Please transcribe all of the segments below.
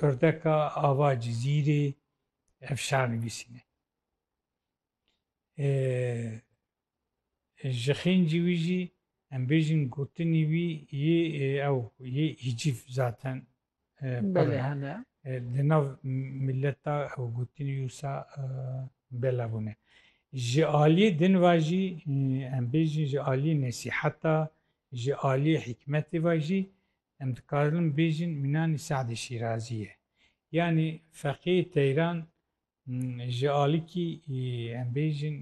Urdeka ava Cizîrê ev şer nivîsîne. Ji xêncî wî jî em bêjin gotinî wî yê ew yê hîcîf zaten belê hene. Di nav milleta ew gotinî wisa bela bûne. Ji aliyê din va jî em bêjin ji aliyê nesîheta ji aliyê hikmetê va jî Em dikarin bêjin mînanî Se'dî Şîrazî ye. Yanî feqîhê Teyran ji alikî em bêjin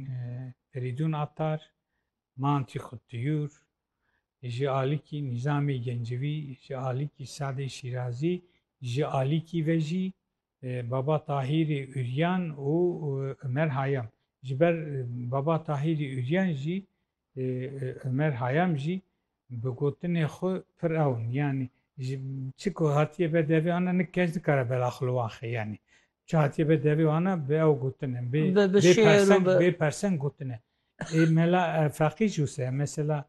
Ferîdûn Atar, Mantî Xuttiyûr, ji alikî Nîzamê Gencivî, ji alikî Se'dê Şîrazî, ji alikî ve jî Baba Tahîrê Uryan û Umer Hayam Ji ber Baba Tahîrê Uryan jî Umer Hayam jî bi gotinê xwe pir ew in. Yanî ji çi ku hatiye be devê ana nik kes nikare bela xwe li wan xe yanî. Çi hatiye be devê ana bi ew gotin in. Bê perseng bê perseng gotin e. Ê mela feqî jî wisa ye. Mesela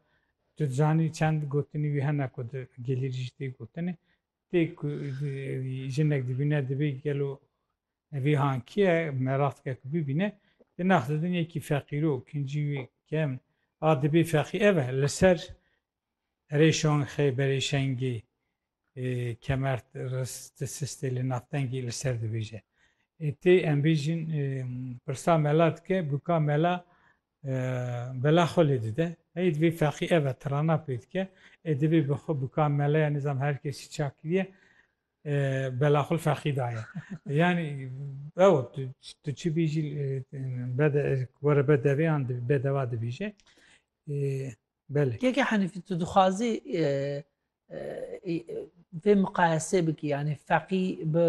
tu dizanî çend gotinî wî hene ku di gelêrî jî tê gotinê. Ti ku jinek dibîne dibê gelo evî hankiye meratkek bibîne di nax de din yekî feqîro kincî wî kem a dibê feqî ev e li ser erê şonxê berê şengê kemert riz ti sistê li naftengî li ser dibêje. Ti em bêjin pirsa mela dike bûka mela Bela xwe lê dide. Hey divê feqî ev e tirana pê dike. Ê divê bi xwe bi ka mele ya nizam her kesî çak kiriye bela xwe li feqî daye. Yanî ew tu çi bîjî were bedevê yan bedeva dibîje. Belê. Yekê Henîfî tu dixwazî vê miqayesê bikî yanî feqî bi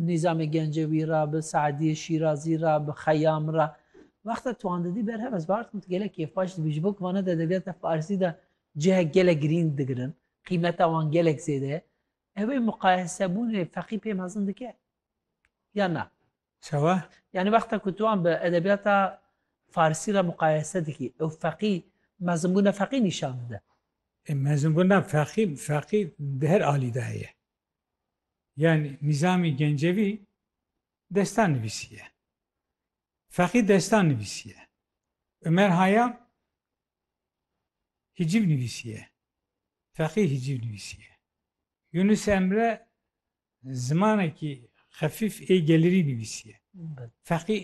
nîzamê gencewî ra bi Saediyê Şîrazî ra bi xeyam ra wexta tuan didî berhev ez bartim tu gelek kêfbaş dibî ji bo ku vana de edebiyata farsî de cihek gelek girîng digirin qîmeta wan gelek zêde ye ew ê miqayesebûnê feqî pê mezin dike ya na Çawa? Yanî wexta ku tu wan bi edebiyata farsî re muqayese dikî, ew feqî, mezinbûna feqî nîşan dide. E mezinbûna feqî, feqî di her alî de heye. Yanî Nîzamî Gencevî destan nivîsiye. Feqî destan nivîsiye. Umer Hayam hicîv nivîsiye. Feqî hicîv nivîsiye. Yunus Emre Zimanekî xefîf ê gelirî nivîsiye. Feqî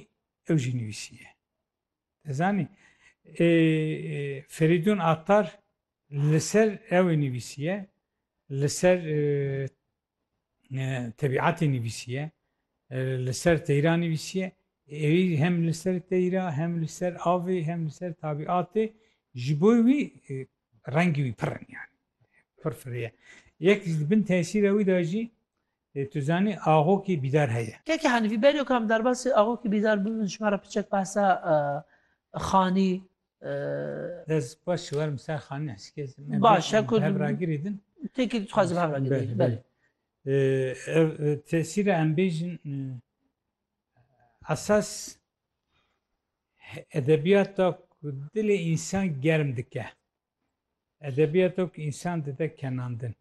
ew jî nivîsiye. Te zanî ê Ferîdûn Attar li ser ew ê nivîsiye, li ser tebîatê nivîsiye, li ser teyra nivîsiye, êrî hem li ser teyra, hem li ser avê, hem li ser tabîatê ji bo wî rengî wî pir in yanî. Pir firiye. Yek ji di bin tesîra wî de jî tu zanî axokî bîdar heye. Keke Henîfî, Beno kam derbasî axokî bîdar bûn ji me re piçek behsa Xanî. Ez spas ji werim ser Xanî heskê ez. Baş e ku. Hevragirî din. Têkî tu dixwazî bi hevragirî din. Belê. Ev tesîra em bêjin esas edebiyata ku dilê însan germ dike. Edebiyato ku însan dide kenandin.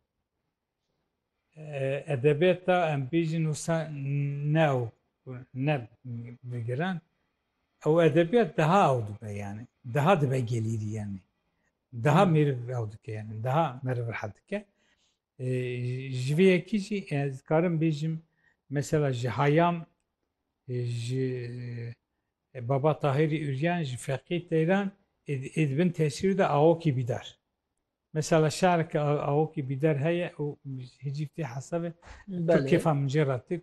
Edebiyata em bêjin wisa ne ew ne bigiran. Ew edebiyat daha ew dibe yani. Daha dibe gelîrî yani. Daha mêrv ew dike yani. Daha meriv rehet dike. Ji vê yekê jî ez dikarim bêjim mesela ji Hayam ji Baba Tahirî Uryan ji Feqî Teyran ê di bin tesîrê de Awokî Bîdar. Mesela şareke Awokî Bîdar heye û hicî tê hesabê tu kêfa min jê re tê.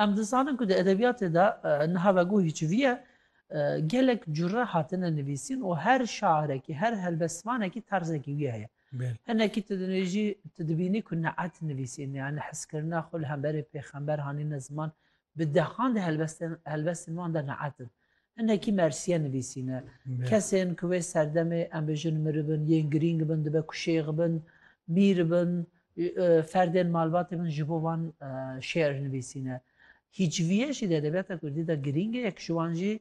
Em dizanin ku di edebiyatê de niha veguhî çi viye gelek cure hatine nivîsîn û her şairekî, her helbestvanekî terzekî wî heye. Hinekî tu dinêjî, tu dibînî ku Ne'et nivîsîn ya nehizkirina xwe li hemberî pêxember hanîne ziman, bi dehan de helbestên wan de ne'et in. Hinekî mersiye nivîsîne. Kesên ku wê serdemê em bijin miribin, yên girîng bin, dibe ku şêx bin, mîr bin, ferdên malbatê bin ji bo wan şê'ir nivîsîne. Hîcvîye jî di edebiyata kurdî de girîng e, yek ji wan jî